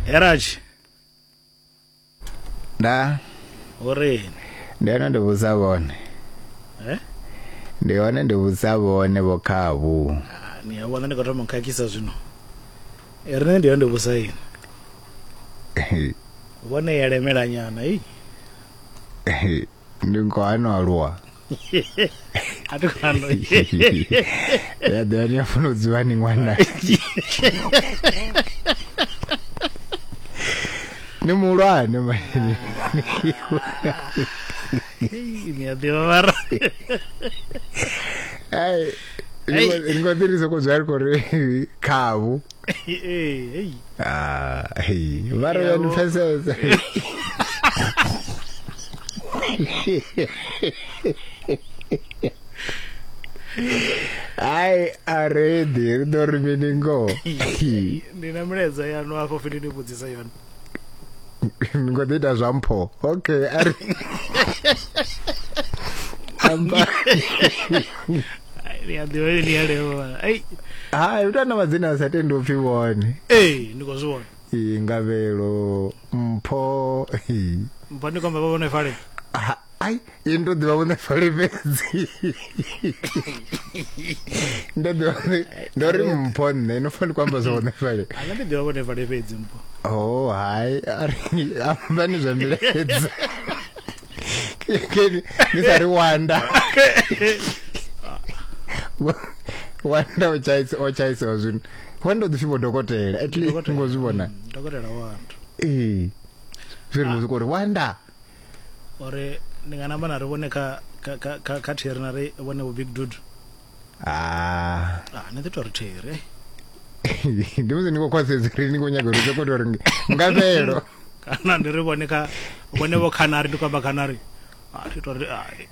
heraj nda urini ndi hone ndi vhudza vhone Eh? ndi hone ndi vhudza vhone vho khavhu Ah, ni a vhona ndi khou thoma u khakhisa zwino Eh, riṋe ndi yone vhusa ini vhone ya lemela nyana i ndi ngo ano aluwa a thi khou ano ya ḓo ni a funa u dzivha ni ṅwana ni muhulwane manini ni a ḓivha mara ai ni ngo ḓirisa ku zwa ri khou ri khavu hey ah hey mara Yabo. uyanipeseza ai aredi ri ḓo ri mini ngoho ndi na milaedza yanu afho fhethu ni vhudzisa yone ni ngo ḓi ita zwa mpho okay ari amba ni a ḓivha ni a levha ai ha uta na madzina a sa tendi upfi vhone eh ndi khou zwi vhona i ngavhelo mpho mpho ndi khou amba vha vhone fale ai ini ndo ḓivha vhone fale fhedzi ndo ḓivha vhone- ndo ri mpho nṋe no fani ku amba zwa vhone fale a nṋe ndi ḓivha vhone fale fhedzi mpho oh hai ari amba ni zwa milaedza Keni, ni sa ri wanda wanda o tshaisa o tshaisa zwino wanda u ḓi fhiwa dokotela at least Dokotela. ngo zwi vhona dokotela wanda ee zwi ri muzika uri wanda uri ndi nga namba na ri vhone kha kha theri na ri vhone vho big dude ah ah ni ḓi tori theri ndi musi ni khou khwasedza uri ni khou nyaga uri sokoto uri nga fhelo kana ndi ri vhone kha vhone vho khanari ndi kwamba khanari a ah, thi tori ai ah,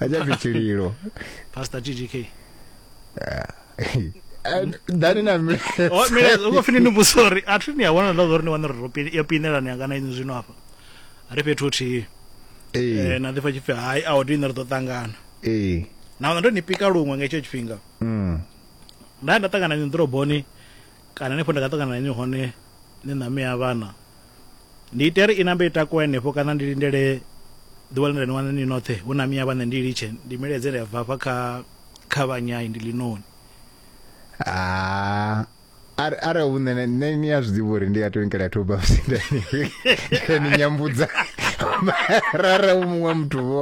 achafi chililo pastor ggk dani na mile Oh, mira, uko fini ni busori atri ni awona ndo zori ni wana ro pini ya pinela ni akana inzi zwino hapa ari fhethu huthihi eh Eh, na ḓifha tshipfi hai a odini ri ḓo ṱangana eh na wana ndo ni pika luṅwe nga hetsho tshifhinga mm nda nda ṱangana ni ḓoroboni Kana henefho nda nga ṱangana na inwi hone ni na mme a vhana, ndi ite ri inambe i takuwe henefho kana ndi lindele ḓuvha ḽe nda ni wana ni noṱhe hu na mme a vhana ndi litshe ndi miledze ndi a bva hafha kha kha vhanyai ndi linoni. Ah are are u nṋe nṋe ni a zwiḓivha uri ndi ya twinkela two buffs nda ni nyambudza mara u muṅwe muthu vho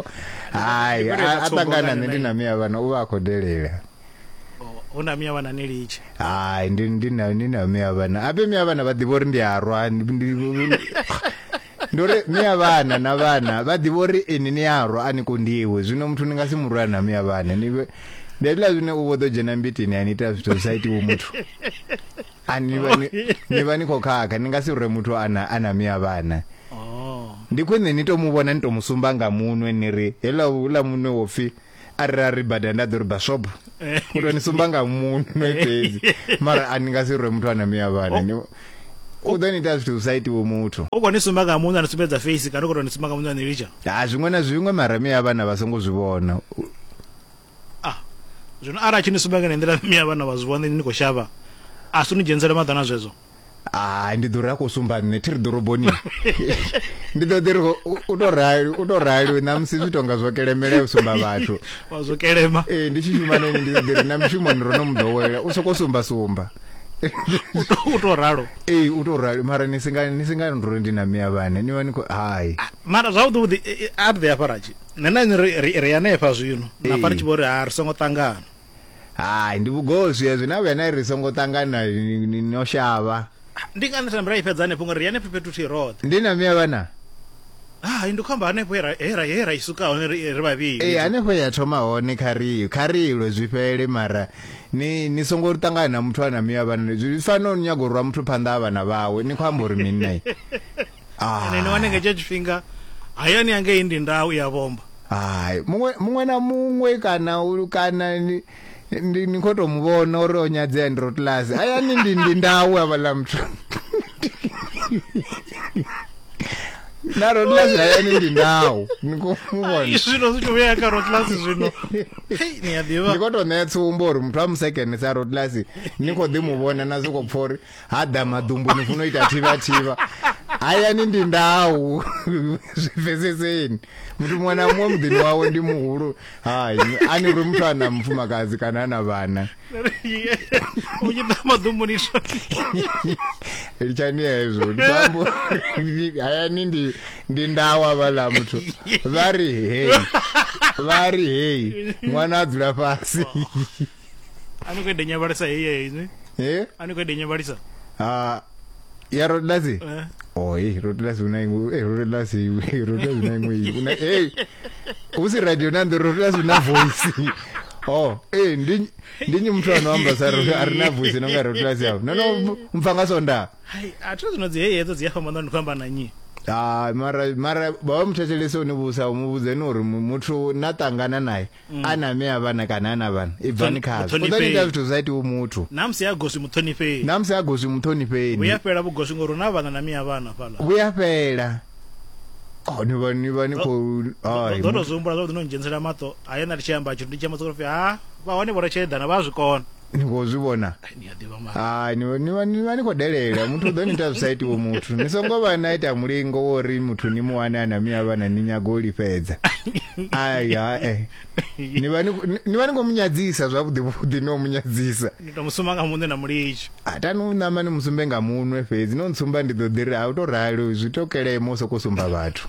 hai a ṱangana nṋe ndi na miya vhana u vha a khou delela hu na miyavhana ni litshe hai ndi ndi na ni na miyavhana ape miyavhana vha ḓivha uri ndi a rwa ndi ndi uri miyavhana na vhana vha ḓivha uri ini ni a rwa a ni kondiwe zwino muthu ni nga si murwa na miyavhana ni vhe ndi hezwiḽa zwine u vho ḓo dzhena mbitini a ni ita zwithu zwi sa itiwo muthu ani vha ni ni vha ni khou khakha ni nga si rwe muthu a na a na miyavhana oh ndi khwine ni to mu vhona ni to mu sumba nga munwe ni ri hela hula munwe wo pfi arali bada nda ḓo ri bashop u tou ni sumba nga muno fhedzi mara a ni nga si rwe muthu a na miya vhana ni u ḓo ni ita zwithu zwi sa itiwe muthu u khou ni sumba nga muno a ni sumbedza face kana u khou tou ni sumba nga muno a ni litsha ha zwiṅwe na zwiṅwe mara miya vhana vha songo zwi vhona ah zwino arali a tshi ni sumba nga nḓila miya vhana vha zwi vhona ni khou shavha a si ni dzhenisele maḓana zwezwo hai ndi ḓo ri a khou sumba nṋe thi ri ḓoroboni ndi ḓo ḓi ri u tou rali u tou rali na musi zwi tonga zwo kelemela u sumba vhathu wa zwo kelema ee ndi tshi shuma neni ndi ḓo ḓi ri na mushumoni ro no mu ḓowela u sokou sumba sumba u tou ralo ee u tou rali mara ni singa ni singa nduri ndi na miya vhane ni vha ni khou hai ah, mara zwavhuḓi vhuḓi a ḓi hafha ratshi nṋe na ri ri hanefha zwino na fha ri tshi vho ri ha ri songo ṱangana hai ndi vhugoswi hezwi na vhuya na ri songo ṱangana no shavha ndi ngani thembe ra i fhedza hanefho ngori ri hanefho fhethu thi roṱhe ndi na miya vhana hai ndi khou amba hanefho he ra i suka hone ri vhavhili ee hanefho ya thoma hone kha ri kha ri ilwe zwi fhele mara ni ni songo ri ṱangana na muthu a na miya vhana zwi fanela u nyaga u rwa muthu phanḓa ha vhana vhawe ni khou amba uri mini naye Ah. ene ni wane nga tsha tshifhinga hayani ya ngei ndi ndau ya vhomba hai muṅwe muṅwe na muṅwe kana u- kana ni ndi ni khou tou mu vhona uri o nyadzea ndi rotlasi hayani ndi ndi ndau havhaḽa muthu na rotlasi hayani ndi ndau ni khou mu vhona Ai, zwino zwi tshi vhuya kha rotlasi zwino Hei, ni a ḓivha ndi khou tou ṋea tsumbo uri muthu a musekene sa rotlasi ni khou ḓi mu vhona na zwi khou pfha uri ha ḓa maḓumbu ni funa u ita thivha thivha hayani ndi ndau zwi pfeseseni muthu muṅwe na muṅwe muḓini wawe ndi muhulu hai ani uri muthu ana mufumakadzi kana ana vhana u tshi ḓa maḓumbu ni litshani hezwo ndiambo hayani ndi ndi ndau avhala muthu vha ri hei vha ri hei ṅwana a dzula fhasi a ni khou eḓe nyabalisa heyi inwi eh? a ni khou eḓe nyabalisa ah, ya rodelasi eh. oyi oh, rodelasi una iṅwe eh, rodelasi rodelasi una iṅwe una hey u si radio na ndo rodelasi una voice oh eh ndi ndi nyi muthu ano amba sa ro ari na voice no nga rodelasi yao no no mfa nga sonda hai a thu zino dzi heyi hedzo dzi ya famba ndo ndi khamba na nyi ha ah, mara mara ba muthethelese une vhusa umuvhudze ni uri muthu na tangana naye mm. a na mme a vhana kana a na vhana i bvani khazwo u ḓo ita zwithu zwa itiwa muthu namusi ya goswi muṱhonifheni namusi ya goswi muṱhonifheni vhuya fhela vhugoswi ngori na vhana na miya vhana fhala vhuya fhela oh, ni vha ni vha ni khou ḓo tou zwi humbula zwavhuḓi no ndzhenisela maṱo a ye na ndi tshi amba tshithu ndi tshi amba sokofi ha vha hone vho ri tsheedana vha a zwi kona ni khou zwi vhona hai ni vha ni khou delela muthu u ḓo ni ita zwi sa itiwo muthu ni songo vha na ita mulingo wo ri muthu ni mu wane a na miya vhana ni nyago u lifhedza ai hae ni vha ni khou munyadzisa zwavhuḓi vhuḓi no munyadzisa ni tou musumba nga muṋe na mulitsho a tani u ṋama ni musumbe nga munwe fhedzi no ntsumba ndi ḓo ḓi ri a u tou rali zwi tokelemo u sokou sumba vhathu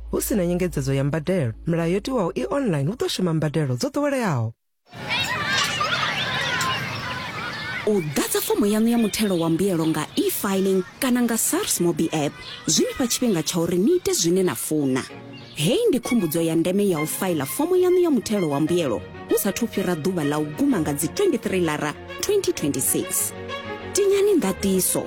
Hu si na nyengedzedzo ya mbadelo, milayo yo tiwaho i online hu ḓo shuma mbadelo dzo ḓoweleaho. u ḓadza fomo yaṋu ya muthelo wa mbuyelo nga e-filing kana nga sars mobi app zwi ni fha tshifhinga tsha uri ni ite zwine na funa heyi ndi khumbudzo ya ndeme ya u faila fomo yaṋu ya muthelo wa mbuyelo hu sathu fhira ḓuvha ḽa u guma nga dzi 23 lara 2026 tinyani ndatiso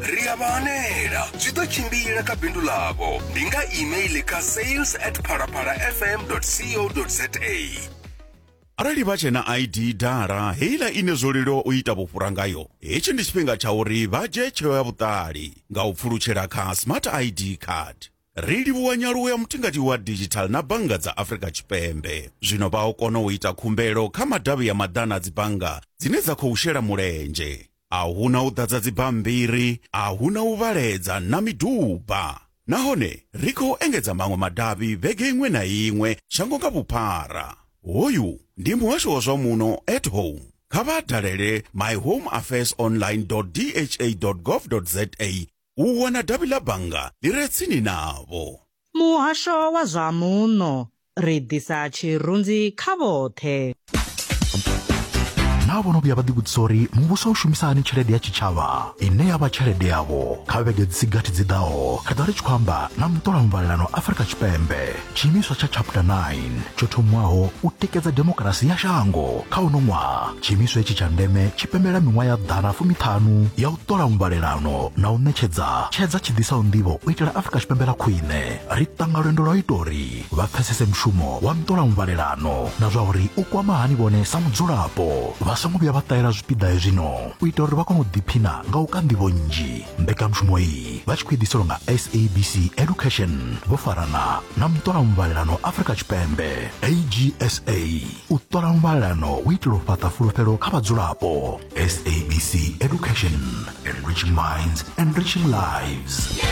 ri a vha hanela zwi ḓo tshimbila kha bindu ḽavho ndi nga email kha sales at phalaphala fm co za arali vha tshe na id dala heiḽa ine zwo leluwa u ita vhufhura ngayo hetshi ndi tshifhinga tsha uri vha dzhie tsheo ya vhuṱali nga u pfulutshela kha smart id card ri livhuwa nyaluwo ya mutingati wa digital na bannga dza afrika tshipembe zwino vha o kona u ita khumbelo kha madavhi ya maḓana a dzibannga dzine dza khou shela mulenzhe A hu na u ḓadza dzibammbiri, a hu na u vhaledza na miduba. Nahone ri khou engedza maṅwe madavhi vhege iṅwe na iṅwe shango nga vhuphara. Hoyu ndi muhasho wa zwa muno at home. Kha vha dalele myhomeaffairsonline dot dha dot gov dot za u wana davhi ḽa bannga ḽi re tsini navho. Muhasho wa zwa Muno, ri ḓisa tshirunzi kha vhoṱhe. Naa vho no vhuya vha ḓivhudzisa uri muvhuso u shumisa hani tshelede ya tshitshavha ine ya vha tshelede yavho? Kha vhege dzi si gathi dzi ḓaho, ri ḓo vha ri tshi khou amba na muṱolamuvhalelano Afrika Tshipembe. tshiimiswa tsha chapter 9 tsho thomwaho u tikedza demokarasi ya shango kha uno ṅwaha tshiimiswa itshi tsha ndeme tshi pembela miṅwaha ya ḓana fumiṱhanu ya u ṱola muvhalelano na u ṋetshedza tshedza tshi ḓisaho nḓivho u itela afurika tshipembe ḽa khwine ri ṱanga lwendo lwa u ita uri vha pfesese mushumo wa nṱola muvhalelano na zwa uri u kwama hani vhone sa mudzulapo vha songo vhuya vha ṱahela zwipiḓa hezwino u ita uri vha kone u ḓiphina nga u ka nḓivho nnzhi mbekanyamushumo iyi Mutambule vha tshi khou idiselwa nga SABC Education vho farana na muṱola muvhalelano Afrika Tshipembe AGSA u ṱola muvhalelano u itela u fhaṱa fulufhelo kha vhadzulapo SABC Education enriching minds enriching lives